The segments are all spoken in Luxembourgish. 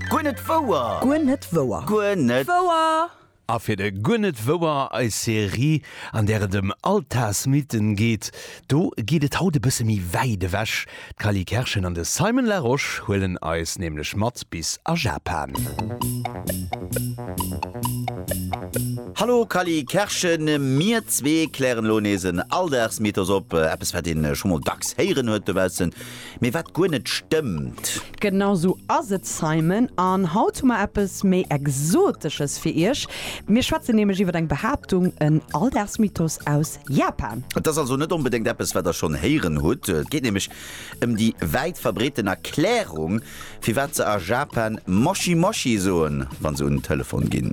Guer net wouer! Guer net wouer! Guer net wouer! A fir de Guer net wouer, eis Serie, an där et ëm Altarsmythen geet, do geet et haut e bësse méi wäit ewech. D'Cally Kerschen an de Simon Larosche huelen eis nämlech mat bis a Japan. Hallo Cally Kerschen, mir zwee klären elo nees en Alldagsmythos op, eppes wat een scho mol dacks héieren huet dobaussen. Mee wat guer net stëmmt. Genau sou ass et Simon, an haut hu mer eppes méi Exotesches fir Iech. Mir schwätzen nämlech iwwer eng Behaaptung, en Alldagsmythos aus Japan. Et ass also net onbedéngt eppes wat der schonn héieren hutt. Et geet nämlech ëm déi wäit verbreeten Erklärung firwat se a Japan Moshi Moshi soen, wa se un den Telefon ginn.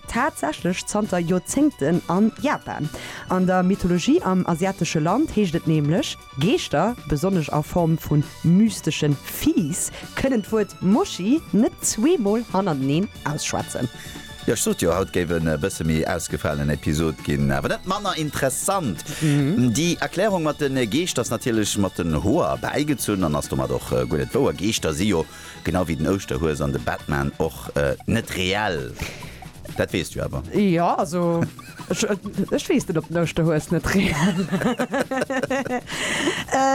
tatsächlech zanter Joerzéngten a Japan. An der Mythologie am asiatesche Land heescht et nämlech, Geeschter, besonnesch a Form vu mysteschen Viehs, kënnen d'Wuert Mochi net zweemol hannerteneen ausschwätzen. Jo, ech sot jo, haut géif en e bësse méi ausgefalenen Episod ginn, awer net manner interessant. Déi Erklärung mat de Geescht ass natierlech mat den Hoer erbäigezunn an ass domat och guer net wouer. Geeschter si jo Genau wéi den Ouschterhues an de Batman och net reell. Dat weess du awer. Jo, also ech weess net op den Ouschterhues net reell ass.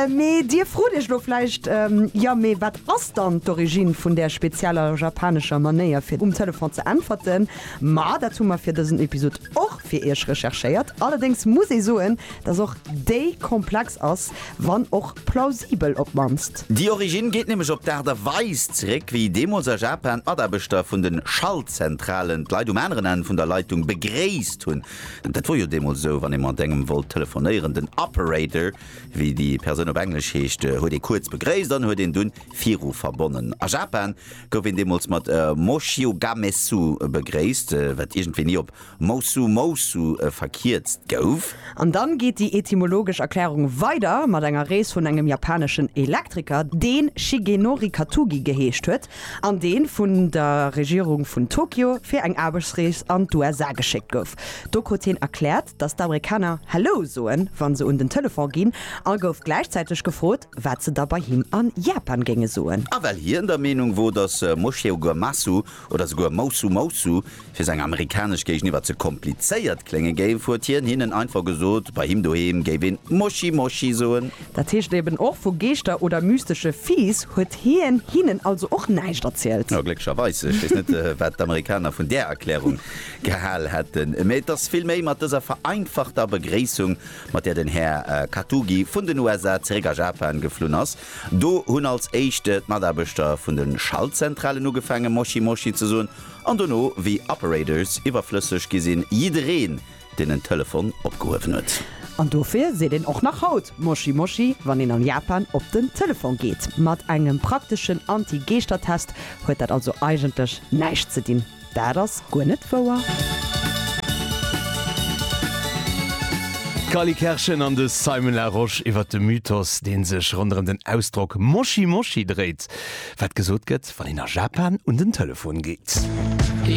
Mee dir frot iech elo vläicht, Jo, mee wat ass dann d'Origine vun där spezieller japanescher Manéier fir um Telefon ze äntwerten? Ma dat hu mer fir dësen Episod och fir iech recherchéiert. Allerdéngs muss ee soen, Dass och déi komplex ass, wann och plausibel op d'mannst. Déi Originn geet nämlech op d'Aart a Weis zeréck, wéi deemools a Japan d'Mataarbechter vun de Schaltzentralen d'Leit um aneren Enn vun der Leitung begréisst hunn. Dat wor jo deemools esou, wann ee mat engem wollt telefonéieren. Den Operator, wéi déi Persoun op Englesch heescht, huet ee kuerz begréisst an huet een dunn viru verbonnen. A Japan gouf een deemools mat Moshiogamesu begréisst, wat iergendwéi ni op Moussou Moussou verkierzt gouf. An dann geet déi etymologesch Erklärung weider mat enger Rees vun engem japaneschen Elektriker, deen Shigenori Katugi geheescht huet an deen vun der Regierung vun Tokio fir eng Aarbechtsrees an d'USA geschéckt gouf. Do krut hien erkläert, dass d'Amerikaner Hello soen, wann se un den Telefon ginn a gouf gläichzäiteg gefrot, wat se da bei him an Japan géinge soen. A well hien der Meenung wor, dass Moshego Masu oder souguer Moussou Moussou, fir seng amerikanesch Géigeniwwer ze komplizéiert klénge géif, huet hien hinnen einfach gesot, bei him doheem géif een Moschi Moschi soen. Dat heescht eben och, vu Geeschter oder mystesche Fiiss huet hien hinnen also och näischt erzielt. Jo, glécklecherweis. Ech weess net, wat d'Amerikaner vun där Erklärung gehal hätten, mä et ass vill méi mat dëser vereinfachter Begréissung, mat där den Här Katugi vun den USA zeréck a Japan geflunn ass. Do hunn als éischt d'Mataarbechter vun de Schaltzentralen ugefaange Moshi Moshi ze soen an dono, wéi Operators iwwerflësseg gi sinn, jiddereen, deen en Telefon opgehuewen huet. An dofir seet een och nach haut Moshi Moshi, wann een an Japan op den Telefon geet. Mat engem prakteschen Anti-Geeschter-Test huet dat also eigentlech näischt ze dinn. Dat ass guer net wouer. D'Cally Kerschen an de Simon Larosche iwwer de Mythos, dee sech ronderëm den Ausdrock Moshi Moshi dréit, wat gesot gëtt, wann een a Japan un den Telefon geet.